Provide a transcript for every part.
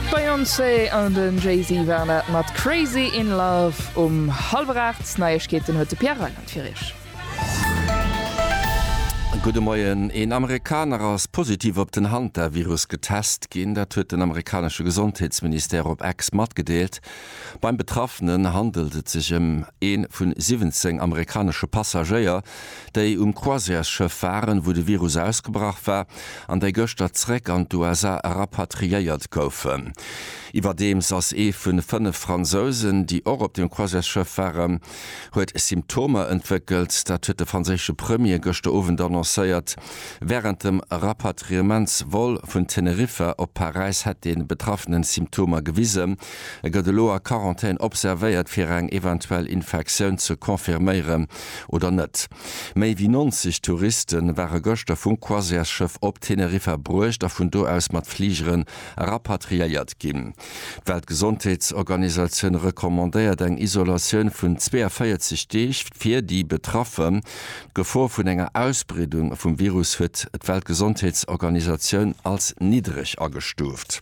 D'Beyoncé an den Jay-Z waren dat mat Crazy in Love um hallwer 8. Neiegkeeten huet de Pierre Reyland fir iech. Gudde Moien. Een Amerikaner ass positiv op den Hantavirus getest ginn. Dat huet den amerikanesche Gesondheetsministère op X matgedeelt. Beim Betraffenen handelt et sech ëm ee vun 17 amerikanesche Passagéier, déi um Croisièresschëff waren, wou de Virus ausgebrach war, an déi gëschter zréck an d'USA rapatriéiert goufen. Iwwerdeems ass ee vun 5 Fransousen, déi och op dem Croisièresschëff waren, huet Symptomer entwéckelt. Dat huet de franséische Premier gëschter Owend annoncéiert. Wärend dem Rapatriements-Vol vun Teneriffa op Paräis hätt de Betraffenen Symptomer gewisen. E gëtt elo a Quarantän observéiert, fir eng eventuell Infektioun ze confirméieren. oder net. Méi wéi 90 Touriste ware gëschter vum Croisièresschëff op Teneriffa bruecht a vun do aus mat Fligeren rapatriéiert ginn. D'Weltgesondheetsorganisatioun recommandéiert eng Isolatioun vun 42 Deeg fir déi Betraffen. D'Gefor vun enger Ausbreedung vum Virus huet d'Weltgesondheetsorganisatioun als niddreg agestuuft.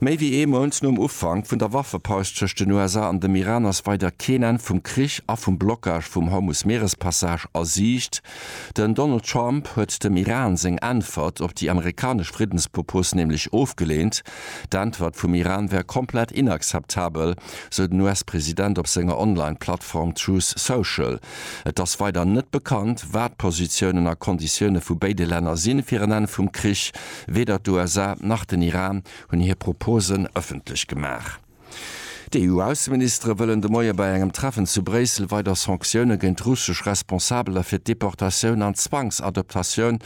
Méi wéi ee Mount nom Ufank vun der Waffepaus tëscht den USA an dem Iran ass weider keen Enn vum Krich a vum Blockage vum Hormus-Meerespassage a Siicht. Den Donald Trump huet dem Iran seng Äntwert op déi amerikanesch Friddenspropos nämlech ofgeleent. D'Äntwert vum Iran wär komplett inakzeptabel, sou den US-President op senger Online-Plattform Truth Social. Et ass weider net bekannt, wat d'Positiounen a Konditioune vu béide Länner sinn, fir en Enn vum Krich. Weder d'USA nach den Iran hunn hir Proposen ëffentlech gemaach. D'EU-Ausseministere wëllen de Moie bei engem Treffen zu Bréissel weider Sanktioune géint russesch Responsabeler fir d'Deportatioun an d'Zwangsadoptatioun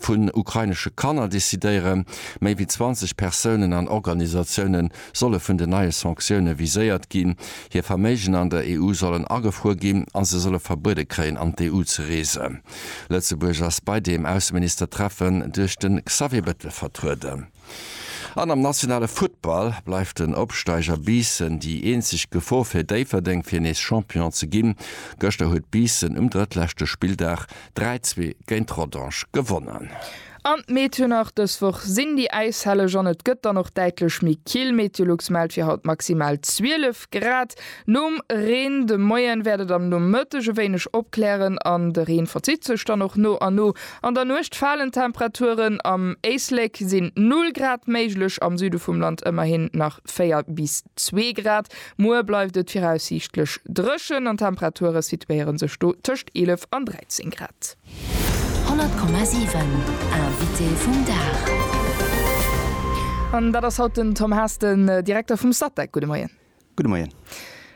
vun ukrainesche Kanner decidéieren. Méi wéi 20 Persounen an Organisatioune solle vun den neie Sanktioune viséiert ginn. Hir Verméigen an der EU sollen agefruer ginn a se solle verbuede kréien, an d'EU ze reesen. Lëtzebuerg ass bei deem Ausseministertreffen duerch de Xavier Bettel vertrueden. An am nationale Futtball bleift den Opsteiger Biissen déi eenzeg Gefor fir Déifferdeng, fir nees Champion ze ginn. Gëschter huet Biissen um drëttleschte Spilldag 3, 2 géint Rodange gewonnen. An d'Meet jo nach, dës Woch sinn déi Äishelleg an et gëtt dann och däitlech méi kill. Meteolux mellt fir haut maximal 12 Grad nom Reen. De Moien wäert et am Nomëtteg e wéineg opklären an de Reen verzitt sech dann och no a no. An der Nuecht falen d'Temperaturen, am Éislek sinn 0 Grad méiglech, am Süde vum Land ëmmerhin nach 4 bis 2 Grad. Muer bleift et viraussiichtlech dréchen an d'Temperature situéiere sech do tëscht 11 an 13 Grad. 100,7 Invité vum Dag An dat ass haut den Tom Haas, den Direkter vum Statec. Gudde Moien. Gudde Moien.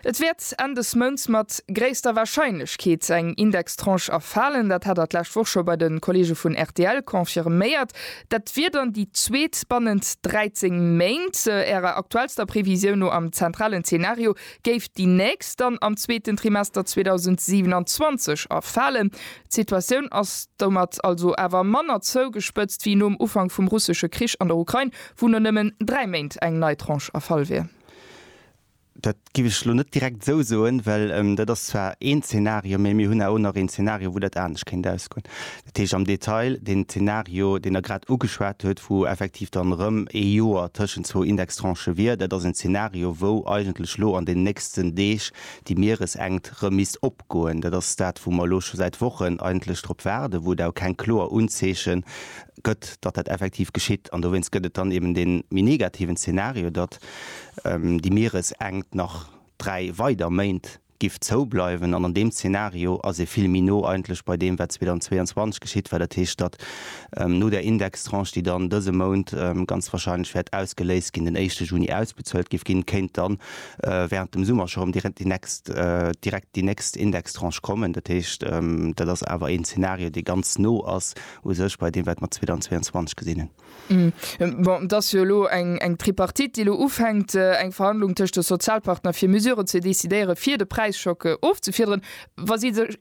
Et wäert Enn des Mounts mat gréisster Warscheinlechkeet eng Indextranche erfalen. Dat hat Der d'lescht Woch scho bei de Kolleege vun rtl confirméiert. Dat wier dann déi zweet bannent 13 Méint. Ärer aktuellster Previsioun no, am zentralen Zenario, Géif déi nächst dann am zweeten Trimester 2027 erfalen, d'Situatioun ass domat also awer manner zougespëtzt wéi nom Ufank vum russesche Krich an der Ukrain, wou no nëmmen dräi Méint eng nei Tranche erfall wier? Dat géif ech elo net direkt esou soen, well dat ass zwar een Zeenario, mä mir hunn awer och nach een Zeenario, wou dat anescht kéint ausgoen. Dat heescht am Detail, deen Zenario, deen Der grad ugeschwat hutt, wou effektiv dann erëm ee Joer tëschent zwou Indextranchë wier, dat ass en Zenario, wou eigentlech elo an den nächsten Deeg déi Mieresenkt erëm misst opgoen. Dat ass dat, wou mer elo scho säit Wochen eigentlech drop waarden, wou et awer keng kloer Unzeeche gëtt, datt dat effektiv geschitt. An dowéinst gëtt et dann eben dee méi negativen Zenario, datt déi Mieresenkt nach dräi weider Méint, giff zou bleiwen, an an deem Zeenario ass ee vill méi no eigentlech bei deem wat 2022 geschitt war, dat heescht datt no där Indextranche déi dann dëse Mount ganz wahrscheinlech wäert ausgeléist ginn, den éischte Juni ausbezuelt giff ginn, kéint dann während dem Summer scho rëm direkt déi nächst Indextranche kommen. Dat heescht dat ass awer een Zeenario dee ganz no ass u sech bei deem wat mer 2022 gesinn hunn. Bon, et ass jo elo eng Tripartite, déi elo ufänkt, eng Verhandlung tëscht de Sozialpartner, fir Mesuren ze decidéieren, fir de Präischock ofzefiederen. Wa si sech.